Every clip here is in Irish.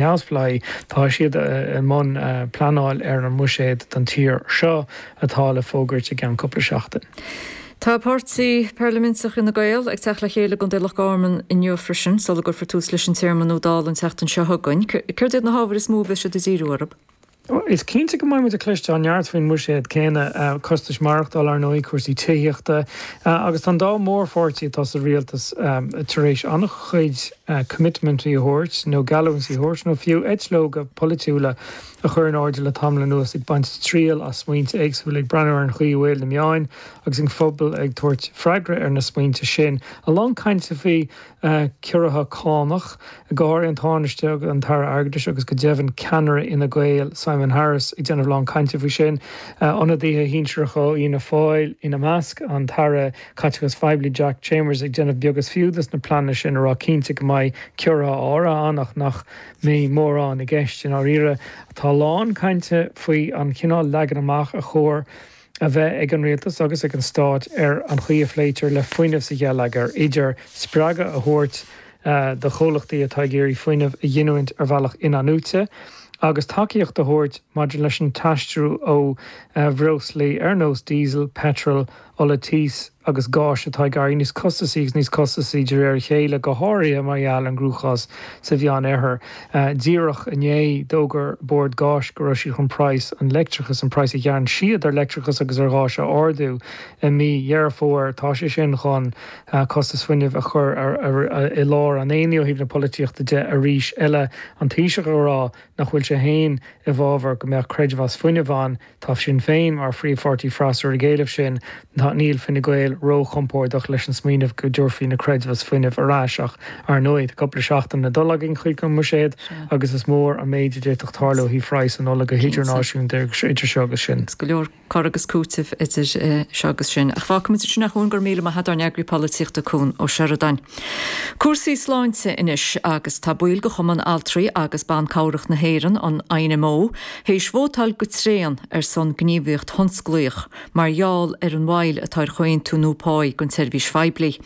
neamhspleáigh, tá siad i mbun pleanáil ar an mbuiséad don tír seo atá le fógairt i gceann cúpla seachtain. Tá páirtí parlaiminteach Fhine Gael ag teacht le chéile i gcontae Loch Garman inniu freisin sula gcuirfear tús leis an téarma nua Dála an tseachtain seo chugainn. Céard iad na hábhair is mó a bheidh siad ag díriú orthu? Is cinnte go mbeidh muid ag cloisteáil neart faoin mbuiséad céanna, costais maireachtála, ar ndóigh, cúrsaí tithíochta agus tá an dá mhórpháirtí atá sa rialtas tar éis an-chuid coimitmintí a thabhairt, nó geallúintí a thabhairt, nó fiú eitleoga polaitiúla a chur in airde le tamall anuas ag baint triail as smaointe éagsúla, ag breathnú ar an chaoi a bhfuil na meáin agus an phobal ag tabhairt freagra ar na smaointe sin. A lán cainte faoi a ciorruithe cánach, go háirithe an Tánaiste, an tAire Airgeadais agus go deimhin ceannaire Fhine Gael, Simon Harris, ag déanamh lán cainte faoi sin, ionadaithe shinsearacha ó Fhianna Fáil ina measc, an tAire Caiteachais Phoiblí Jack Chambers ag déanamh beag is fiú de na pleananna sin ag rá cinnte go mbeidh ciorruithe áirithe ann ach nach mbeidh mórán i gceist i ndáiríre. Tá a lán cainte faoi an chineál leagan amach ar chóir a bheith ag an Rialtas agus ag an Stát ar an chaoi a phléitear le fuinneamh sa gheilleagar, idir spreagadh a thabhairt do chomhlachtaí atá ag iarraidh fuinneamh a ghiniúint ar bhealach in-athnuaite agus tacaíocht a thabhairt maidir leis an t-aistriú ó bhreoslaí ar nós diesel, peitreal, ola tís. agus gás atá ag éirí níos costasaí agus níos costasaí de réir a chéile, go háirithe mar gheall ar an gcruachás sa Mheánoirthear. Díreach inné, d'fhógair Bord Gáis go raibh siad chun praghas an leictreachais, an praghas a ghearrann siad ar leictreachas agus ar ghás, a ardú i mí Dheireadh Fómhair. Tá sé sin chun costas fuinnimh a chur i lár an aonaigh ó thaobh na polaitíochta de arís eile, an Taoiseach ag rá nach bhfuil sé féin i bhfabhar go mbeadh creidmheas fuinnimh ann, Tá Sinn Féin mar phríomhpháirtí freasúra ag éileamh sin. Níl Fine Gael róchompordach leis an smaoineamh go dtabharfaí na creidmheas fuinnimh ar ais ach, ar ndóigh, tá cúpla seachtain le dul againn chuig an mbuiséad agus is mór an méid a d'fhéadfadh tarlú ó thaobh phraghas an ola go hidirnáisiúnta idir seo agus sin. Go leor cur agus cúiteamh idir seo agus sin. Ach fágfaimid sin a Chuain. Go raibh míle maith agat ár n-eagraí polaitíochta, Cuan Ó Seireadáin. Cúrsaí sláinte anois agus tá baill de Chumann Altraí agus Ban Cabhrach na hÉireann, an INMO, théis vótáil go tréan ar son gníomhaíocht thionsclaíoch mar gheall ar an mhoill atá ar chomhaontú nua páí don tseirbhís phoiblí.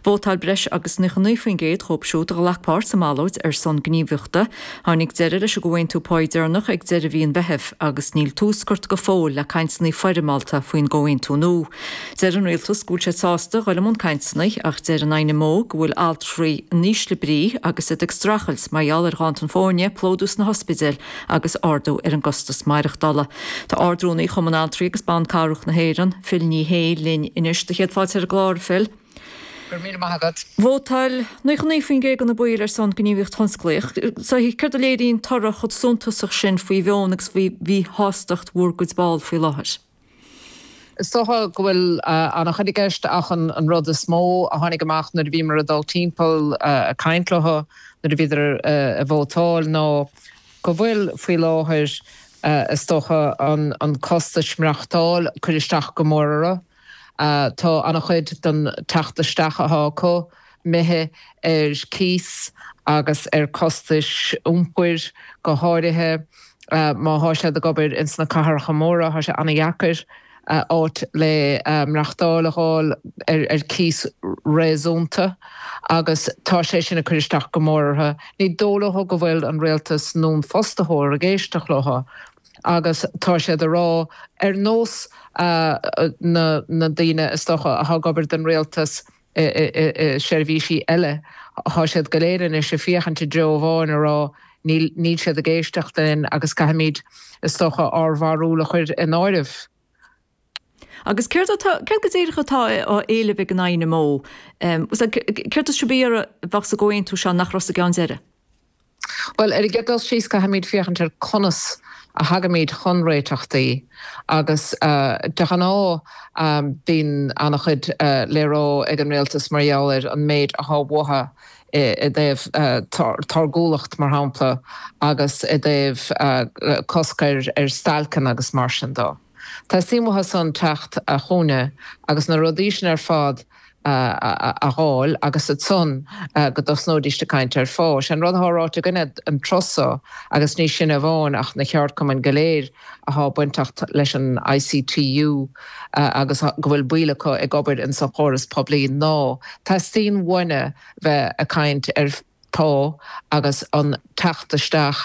Vótáil breis agus 99% dhíobh siúd a ghlac páirt sa mballóid ar son gníomhaíochta. Tháinig deireadh leis an gcomhaontú páí deireanach ag deireadh mhí an Mheithimh agus níl tús curtha go fóill le cainteanna foirmeálta faoin gcomhaontú nua. Deir an rialtas go bhfuil siad sásta dul i mbun cainteanna ach deir an INMO go bhfuil altraí in ísle brí agus iad ag streachailt mar gheall ar ghanntan foirne, plódú sna hospidéil agus ardú ar an gcostas maireachtála. Tá Ard-Rúnaí Chumann Altraí agus Ban Cabhrach na hÉireann, Phil Ní Sheaghdha linn anois. 'Sé do chéad fáilte ar an gclár, a Phil. Go raibh míle maith agat. Vótáil 99% de na baill ar son gníomhaíocht thionsclaíoch. Céard a léiríonn toradh chomh suntasach sin faoi mheon agus faoi mhíshástacht bhur gcuid ball faoi láthair? Is dócha go bhfuil an-chuid i gceist ach an rud is mó a tháinig amach nuair a bhíomar ag dul timpeall ag caint leo nuair a bhíodar ag vótáil ná go bhfuil, faoi láthair, is dócha, an costas maireachtála ag cur isteach go mór orthu. Tá an-chuid den teacht isteach atá acu, imithe ar chíos agus ar chostais iompair, go háirithe má thá siad ag obair ins na cathracha móra, thá sé ana-dheacair áit le maireachtáil a dh'fháil ar chíos réasúnta agus tá sé sin ag cur isteach go mór ortha. Ní dó' leo go bhfuil an Rialtas nó an Fostaitheoir ag éisteacht leo agus tá siad ag rá, ar nós na ndaoine, is dócha, athá ag obair don Rialtas, seirbhísí eile. Tá siad go léir anois ag féachaint i dtreo amháin ag rá níl níl siad ag éisteacht linn agus caithfimid, is dócha, ár bharúil a chuir in áireamh. Agus céard atá, céard go díreach atá á éileamh ag an INMO? Céard is súil libh a bheadh sa gcomhaontú seo nach raibh sa gceann deiridh? Bhuel, ar an gcéad dul síos, caithfimid féachaint ar conas a thagaimid chun réiteachtaí agus de ghnáth bíonn an-chuid le rá ag an rialtas mar gheall ar an méid atá uathu i dtaobh táirgiúlacht, mar shampla, agus i dtaobh cosc ar stailceanna agus mar sin dó. Teastaíonn uathusan teacht chugainne agus na rudaí sin ar fad a dh'fháil agus ansan go dtosnóidíst ag caint ar phá. Sé'n rud athá ráite againne an turas so, agus ní sinne amháin ach na ceárdchumainn go léir athá bainteacht leis an ICTU agus go bhfuil baill acu ag obair ins an chóras poiblí, ná teastaíonn uainne bheith ag caint ar phá agus an teacht isteach.